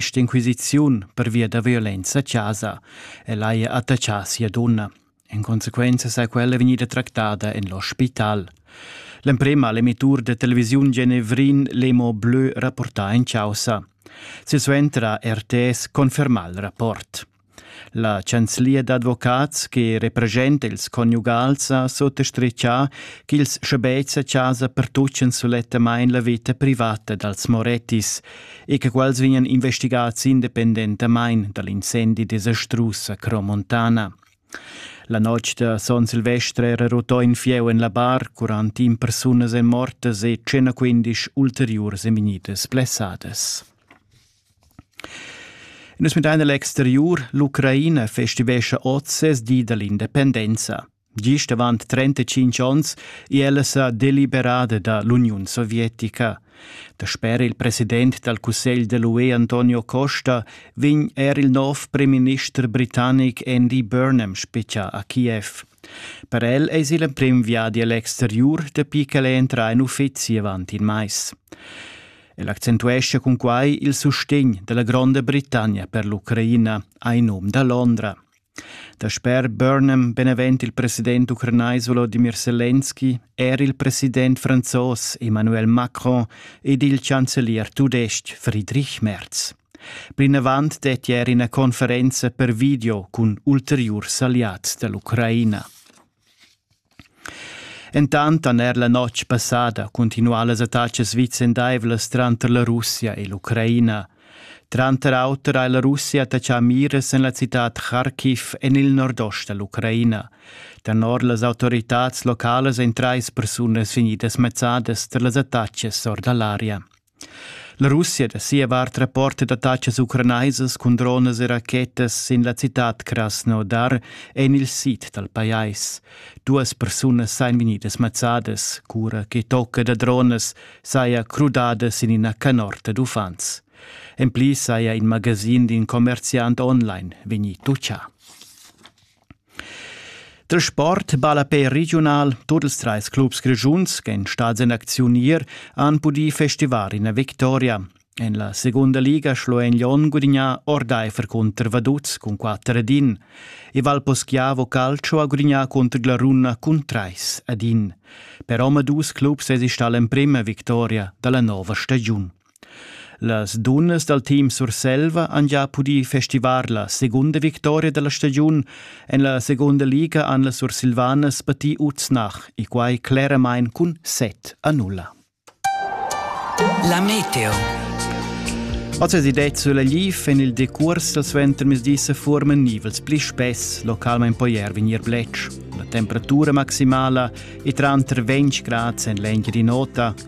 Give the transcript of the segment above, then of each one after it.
St'inquisiziun pervia da violenza chasa el haja attachà sia dunna. In consequenza sa quella vegnida tractada en l'ospital. L'emprema l'emittur de televisiun genevrin Lemo Bleu rapportà in causa. Silsuentra RTS confermà il rapport. La chanzlia d'advocats che representa ils conjugals ha sottastritgà ch'ils schabetgs a chasa pertutgan sulettamain la vita privata dals Morettis e che quels vegnan investigads independentamain da l'incendi desastrus a Cromontana. La notg da son Silvestre era rutò in fieu en la bar, curant in persunas è mortas e 115 ulteriurs è vegnidas blessadas. In es müdain l'exteriur, l'Ucraina festivescha hoz ses di da l'independenza. Gist avant 35 ons è ella sa deliberada da l'Uniun Sovietica. Dasper il president dal Cussegl de l'UE Antonio Costa vegn er il nov premierminister britannic Andy Burnham spichà a Kiev. Per el es il emprim viadi al exteriur dapi ch'el entra in uffizi avant in mais. El accentuescha cun quai il sustegn dalla Gronda Britannia per l'Ucraina ai num da Londra. Dasper Burnham, benevent il president ucranais Volodimir Selenski, er il president franzos Emmanuel Macron ed il chancelier tudestg Friedrich Merz. Plinavant det ier ina conferenza per video cun ulteriurs alliads dell'Ucraina. Entant han er la notg passada cuntinuà las attacas vicendaivlas tranter la Russia e l'Ucraina. Tranter auter ha la Russia attachà miras en la citad Kharkiv en il nordost da l'Ucraina. Tenor las autoritads localas èn trais persunas vegnidas mezzadas tar las attacas or da l'aria. La Russia da sia vart rapporta d'attatgas ucranaisas cun dronas e rachetas sin la citad Krasnodar en il sid dal pajais. Duas persunas sain vegnidas mazzadas, cura che tocca da dronas saja crudada sin ina canorta d'uffants. En pli saja in magasin d'in commerziant online vegnì tutgà. Da sport ballapè regiunal tut ils trais clubs grischuns ch'èn stads en acziunier han pudì festivar ina victoria. En la segunda liga schloen Lyon gudignà ordaifer cunter Vaduz cun 4 ad 1 e Valposchiavo Calcio ha gudignà cunter Glaruna cun 3 ad 1. Per omadus clubs èsi stà l'emprima victoria da la nova stagiun. Las dunnas dal team Surselva han gia pudì festivar la segunda victoria da la stagiun. En la segunda liga han las Sursilvanas patì Uznach e quai cleramain cun set a nulla. La meteo. Oz è detta sulla lif en il decurs dal suentermezdi se formen nivels pli spess, localment poi er vegnir bletsch. La temperatura maximala è tranter 20 grad en l'engia di nota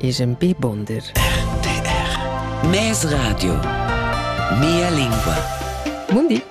es ün bi buonder. RTR Mes radio Mia lingua Mundi